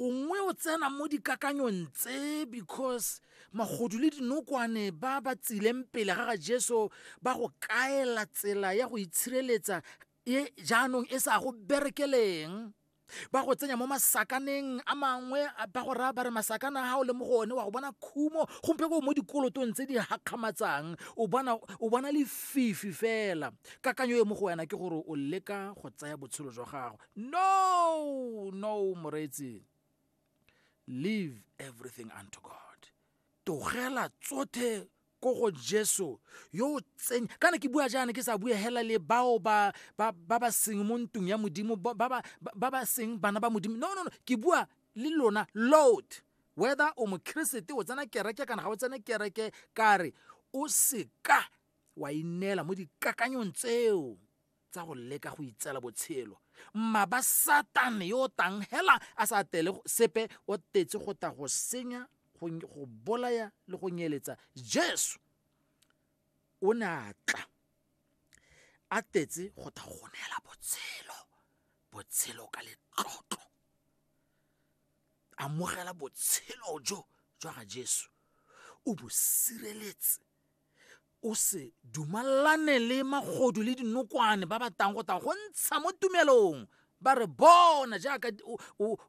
o nngwe o tsena mo dikakanyong tse because magodu le dinokwane ba ba tsileng pele ga ga jesu ba go kaela tsela ya go itshireletsa e jaanong e sa go berekeleng ba go tsenya mo masakaneng a mangwe ba go raya ba re masakana a o le mo go one wa go bona khumo gompe ko mo dikolotong tse di gakgamatsang o bona o bona lefifi fela kakanyo e mo go wena ke gore o leka go tsaya botshelo jwa gago no no moreetsi leave everything unto god togela tsothe ko go jesu yo o tseng kana ke bua jaana ke sa bue hela le bao ba ba ba seng mo ntung ya modimo ba ba ba ba seng bana ba modimo no no no ke bua le lona load whether o mokrisete o tsena kereke kana ga o tsene kereke kare o seka wa ineela mo dikakanyong tseo tsa go leka go itseela botshelo mmaba satane yo o tang hela a sa tele sepe o tetse go ta go senya go bolaya le go nyeletsa jesu o ne a tla a tetse go ta go neela botshelo botshelo ka letlotlo amogela botshelo jo jwa ga jesu o bo sireletse o se dumalane le magodu le dinokwane ba ba tang go tang go ntsha mo tumelong ba re bona jaaka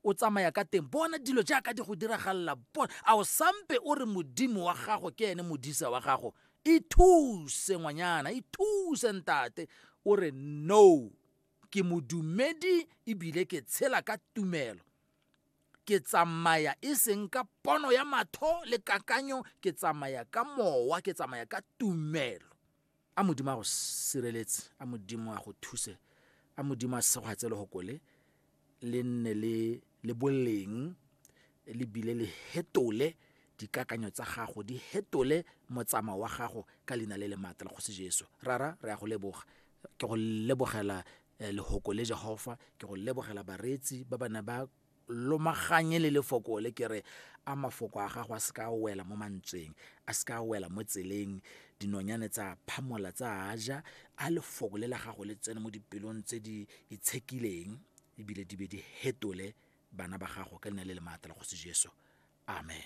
o tsamaya ka teng bona dilo jaaka di go diragalela bona a o sampe o re modimo wa gago ke ene modisa wa gago ithuse ngwanyana ithuse ntate o re no ke modumedi ebile ke tshela ka tumelo ke tsamaya e seng ka pono ya matho le kakanyo ke tsamaya ka mowa ke tsamaya ka tumelo a modimo a go sireletse a modimo a go thuse a modimo a segwatse le gokole le nne le boleng le bile le hetole dikakanyo tsa gago di hetole motsamao wa gago ka leina le le maatla la kgosi jesu rara re ya go leboga ke go lebogela eh, lehoko le jehofa ke go lebogela bareetsi ba bana ba lomaganye le lefoko le ke re a mafoko a gago a se ka wela mo mantsweng a se ka wela mo tseleng dinonyane tsa phamola tsa ja a lefoko le la gago le tsene mo dipelong tse di itshekileng ebile di be di hetole bana ba gago ka leina le le maatla la kgosi jesu amen